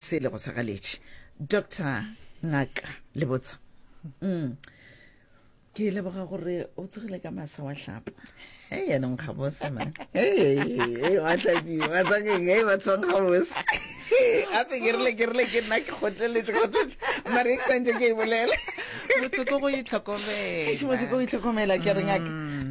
Se lego sa galetše. Doctor, Ngaka, le botsa. Mm. Ke leboga gore o tsogile ka masa wa hlapa. Hey, ya nong ga bose man. Hey, wa hlapi, wa tsakeng, hey, ba tswang ga bose. Ape ke rile ke rile ke nna ke kgotleletše kgotleletše. Mare ke santse ke e bolela. motsoko go Eish, motse ko o itlhokomela itlhokomela ke re ngaka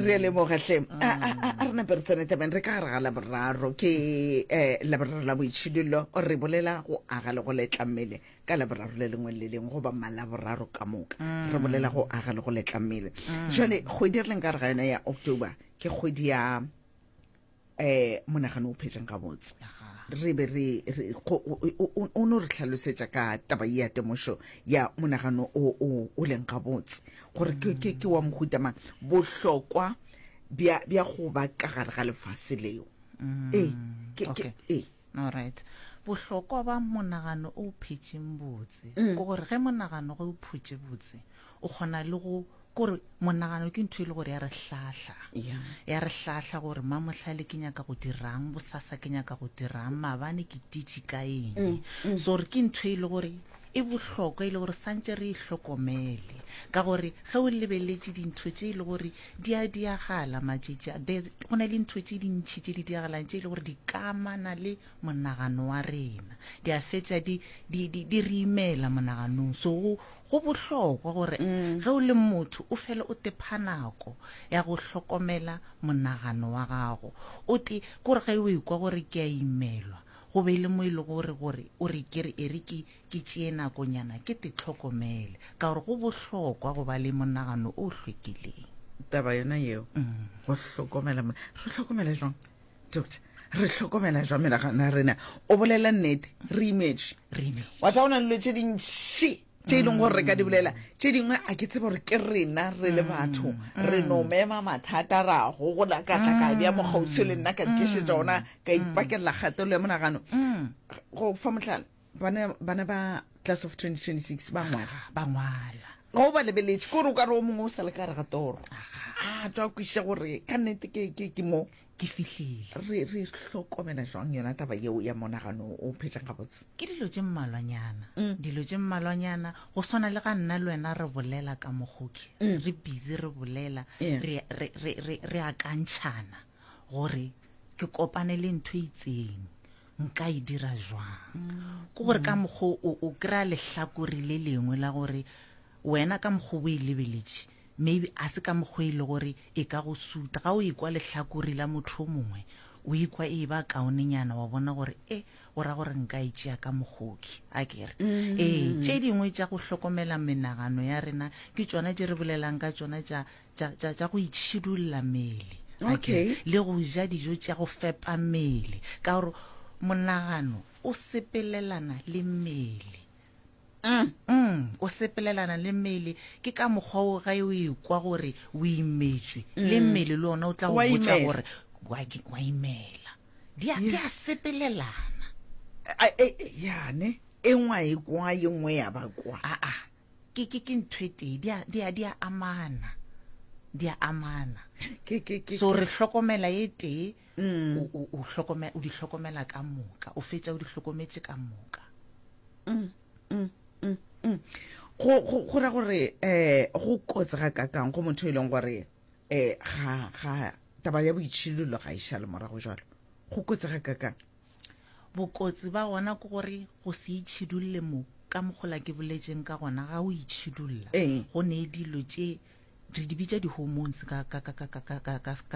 re a leboga hle a a- a- a re nape re tsene tabeng re ka gare ga laboraro ke um laboraro la boitšhidullo re bolela go aga le go letla mmele ka laboraro le lengwe le le lengwe goba malaboraro ka moka re bolela go aga le go letla mmele jale kgwedi re leng ka gare ga yona ya october ke kgwedi ya eh monagano o phetsang ga botse re be re o no re tlhalosetsa ka taba ya temošo ya monagano o o o leng ga botse gore ke ke ke wa mohuta mang bohlokwa bya bya go ba ka gare ga lefase leo mm, ee ke ke ee all right bohlokwa ba monagano o phetseng botse mm. ke gore ge monagano ge o phutse botse o kgona le go kore monagano ke ntho e le gore ya re hlahla ya re hlahla gore mamohlale ke nyaka go dirang bosasa ke nyaka go dirang mabane ke titši ka eng mm, mm. so gore ke ntho e le gore e bohlokwa e le gore santse re e hlokomele ka gore ge o lebeletse dintho tse e le gore di a diagala matšetši a go na le ntho tse dintšhi tse di diagalang tse e le gore di kamana le monagano wa rena di a fetsa di re imela monaganong so Go bohlokwa gore ge o le motho o fele o tepha nako ya go hlokomela monagano wa gago. O te, ke gore ge o ekwa gore ke a imelwa, go be e le mo e lego gore gore o re ke re e re ke ke tšee nakonyana ke te tlhokomele, ka gore go bohlokwa go ba le monagano o hlwekileng. Taba yona yeo, go hlokomela, re hlokomele jwang? doctor re hlokomela jwa menagano ya rena o bolela nnete re imetše wa tsa go na lelo tse dintši tse e leng gore re ka di bolela tse dingwe a ke tsebe gore ke rena re le batho re no mema mathata ra gogola ka tla ka bja mokgausio le nna ka ntlišetsa ona ka ipakelela kgatelelo ya monagano go fa motlhala bana bana ba class of 2026 ba ngwala ba ngwala ga o ba lebeletše kore o ka re o mongwe o sa le ka re ga toro a twa kwiša gore ka nnete ke ke ke mo ke fihlile re re hlokomela jwang yona taba yeo ya monagano o phetšang gabotse ke dilo tše mmalwanyana Mm. dilo tše mmalwanyana go swana le ga nna le wena re bolela ka mogoke Mm. re busy re bolela Yeah. re- re- re re- re akantšhana gore ke kopane le ntho e itseng nka e dira jwang ke gore ka mokgwa o o kry-a lehlakore le lengwe la gore wena ka mokgwa o e lebeletše maybe a se ka mokgwa e le gore e ka go suta ga o ekwa lehlakore la motho o mongwe o ekwa e ba kaonenyana wa bona gore e o ra gore nka e tšea ka mogoki a kere mm-hmm. ee tše dingwe tša go hlokomela menagano ya rena ke tšona tše re bolelang ka tšona tša tša, tša, tša go itšhidulla mele ga ke Okay. re, le go ja dijo tša go fepa mele ka gore monagano o sepelelana le mele Mm. mm, o sepelelana le mele ke ka mokgwa o ge o ekwa gore o imetšwe le mmele le ona o tla go Wa botsa imela. gore wa ke- wa imela di a di a sepelelana A- e- e- yane e ngwa e kwa ye nngwe ya ba kwa aa Ke, ke, ke ntho e tee, di a, di a, di a amana, di a amana. Ke, ke, ke, So ke- re hlokomela e tee, Mm. o, o, o, hlokomela, o di hlokomela ka moka, o fetša o di hlokometše ka moka. go go go ra gore eh go kotse ga kakang go motho e leng gore eh ga ga taba ya boitšhilolo ga e šale morago jalo go kotse ga kakang Bokotsi ba gona ke gore go se itšhidulle mo ka mogola ke boletšeng ka gona ga o itšhidulla ee. go ne dilo tše re di bitša di-hormones ka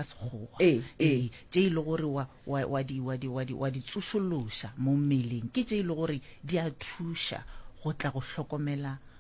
sekgowa ee, ee. tše e le gore wa di tsošološa mo mmeleng ke tše e le gore di a thuša go tla go hlokomela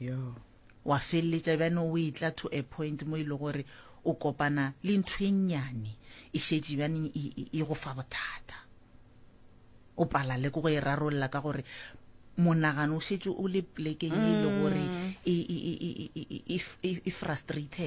Yoo. Wa feleletša bjane o etla to a point mo e le gore o kopana le ntho e nnyane e šetše bjane e, e, e go fa bothata. O pala le ko go e rarolla ka gore monagano o šetše o le plekeng e le gore e, e, e, e, e, e, e, e frustrated.